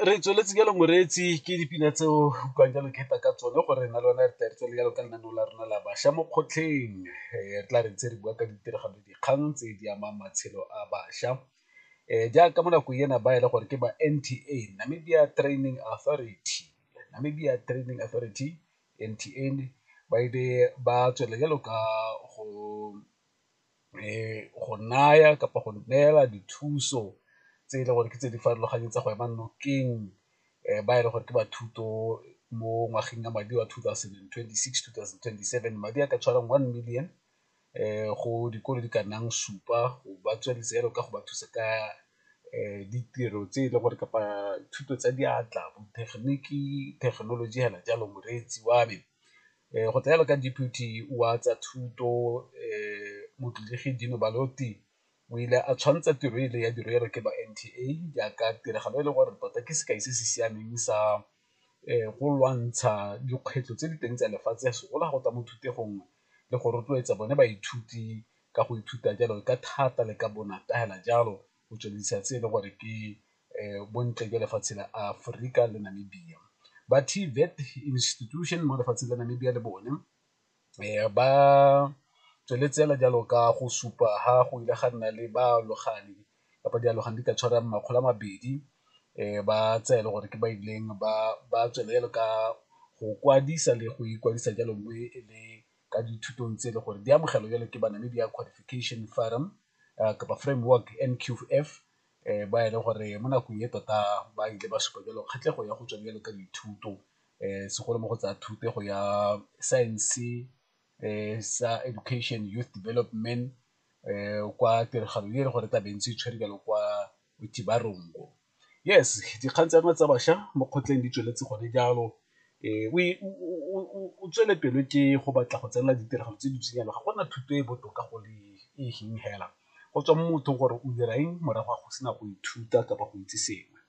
Re tsweletse jalo moreetsi ke dipina tse o utlwang jalo ke feta ka tsone gore re na le one re tla re tswelele jalo ka lenaneo la rona la bašwa mo kgotlheng re tla re ntse re bua ka ditiragalo dikgang tse di amang matshelo a bašwa jaaka mo nakong ena ba e le gore ke ba N_T_A, Namibia Training Authority, Namibia Training Authority, N_T_A, ba ile ba tswelela jalo ka go go naya kapa go neela dithuso tse e le gore ke tse di farologaneng tsa go ema nokeng ba e leng gore ke ba thuto mo ngwageng ya madi wa two thousand and twenty-six, two thousand and twenty-seven. Madi a ka tshwarang one million go dikolo di ka nnang supa go ba tsweletse jalo ka go ba thusa ka ditiro tse e leng gore kapa thuto tsa diatla, botegeniki, thekenoloji fela jalo moreetsi wa me. Go tsaya jalo ka Deputy wa tsa Thuto Motlholegi Dino Baloti o ile a tshwantsha tiro e le ya dirwelo ke ba NTA jaaka tiragalo e le gore tota ke sekai se se siameng sa go lwantsha dikgwetlho tse di teng tsa lefatshe segolo ga go tla mo thutegong le go rotloetsa bone baithuti ka go ithuta jalo ka thata le ka bonatla fela jalo go tswelelisa tse e le gore ke bontle jwa lefatshe la Aforika le Namibia. Ba TVET institution mo lefatsheng la Namibia le bone ba tsweletse fela jalo ka go supa ha go ile ga nna le baalogane kapa dialogane di ka tshwarang makgolo a mabedi ba tse e le gore ke ba ileng ba tswelela ka go kwadisa le go ikwadisa jalo mme e le ka dithutong tse e le gore di amogelwa jalo ke Banamibia Qualification Forum kapa Framework NQF ba e leng gore mo nakong e tota ba ile ba supa jalo kgatlhego ya go tswa jalo ka dithuto segolo mo go tsaya thuto go ya science sa education youth development kwa tiragalo e le gore tla bentse tshwere jalo kwa Motibarongo. Yes, dikgang tsa rona tsa bašwa mo kgotleng di tsweletse gone jalo o tswele pelo ke go batla go tsenela ditiragalo tse di tshwenyang ga gona thuto e botoka go le e feng fela go tswa mo mothong gore o dira eng morago ga go sena go ithuta kapa go itse sengwe.